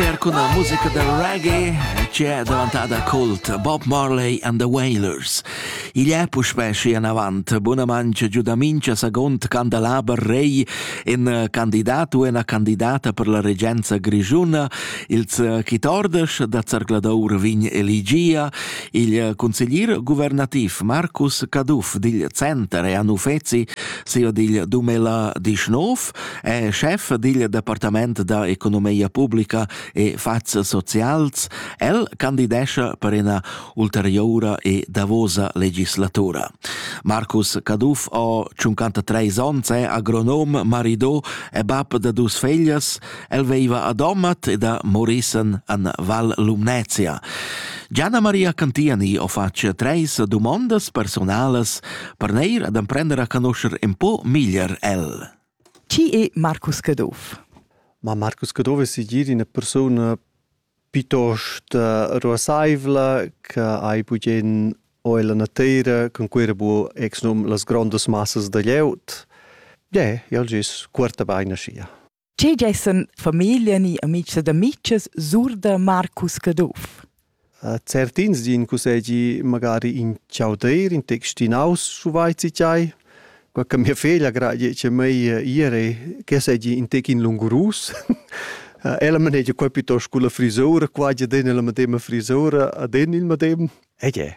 Per cun la musica da reggae c'è davantada cult Bob Marley and the Wailers. Igl è puspè schi anavant buna mangia giu da mincha segund candelaber rei in eh, candidat u ina candidata per la regenza grigiuna, ils eh, chitordes da Zergladour vin eligia, il eh, consiglier guvernativ Marcus Caduff digl center e anufezi, sio digl 2019, è chef digl departament da economia publica e fats socials. El candidescha per ena ulterioura e davosa legislatura. Marcus Caduff ha 53 onns, è agronom, marido e bab da dus feglias. El veiva a Domat e da Morissen an Val Lumnezia. Gianna Maria Cantiani ha fatg treis domondas personalas per neir ad emprender a conoscer un po miglier el. Chi è Marcus Caduff? Ma Marcus Caduff es segir üna persuna piitost ruassaivla che hai bugen o ella nateira cun Cuera bu ex num las grondas massas da glieud. Ie, ja'l gess cuorta bain aschia. Che gessen famiglia ni amics ed amitgs sur da Marcus Caduff? Certins din cussegi magari in chaudrir, in textinaus, schu vaizi tgei. Quei che mia feglia gradi che mei ir e che segi in tec in lungurus. Ella manegia quei piuttosto culla frisura, qua gia den la medema frisura ad en il medem. Ed è.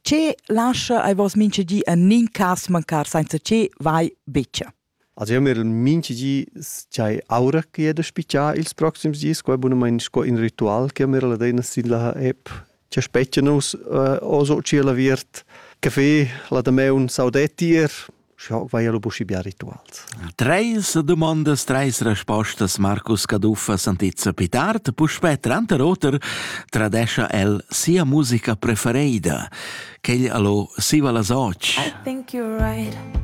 Ce lascia ai vos minchedi en nin cas mancar senza ce vai betg. Also io m'el minchi di dschai oura ch'i he da spichar ils proxims dis, quai bunamaing sco ün ritual ch'io m'er adina sin la app cha spetgia nus oz ho tschierl aviert café, la damaun saudetti ir. Scha hoc vaia lu buschi bia rituals. Treis dumondas, treis respostas Marcus Caduff a Santizia Pitart. Puspè tranter oter tradescha el sia musica preferida. Quegl allo siva las och. I think you're right.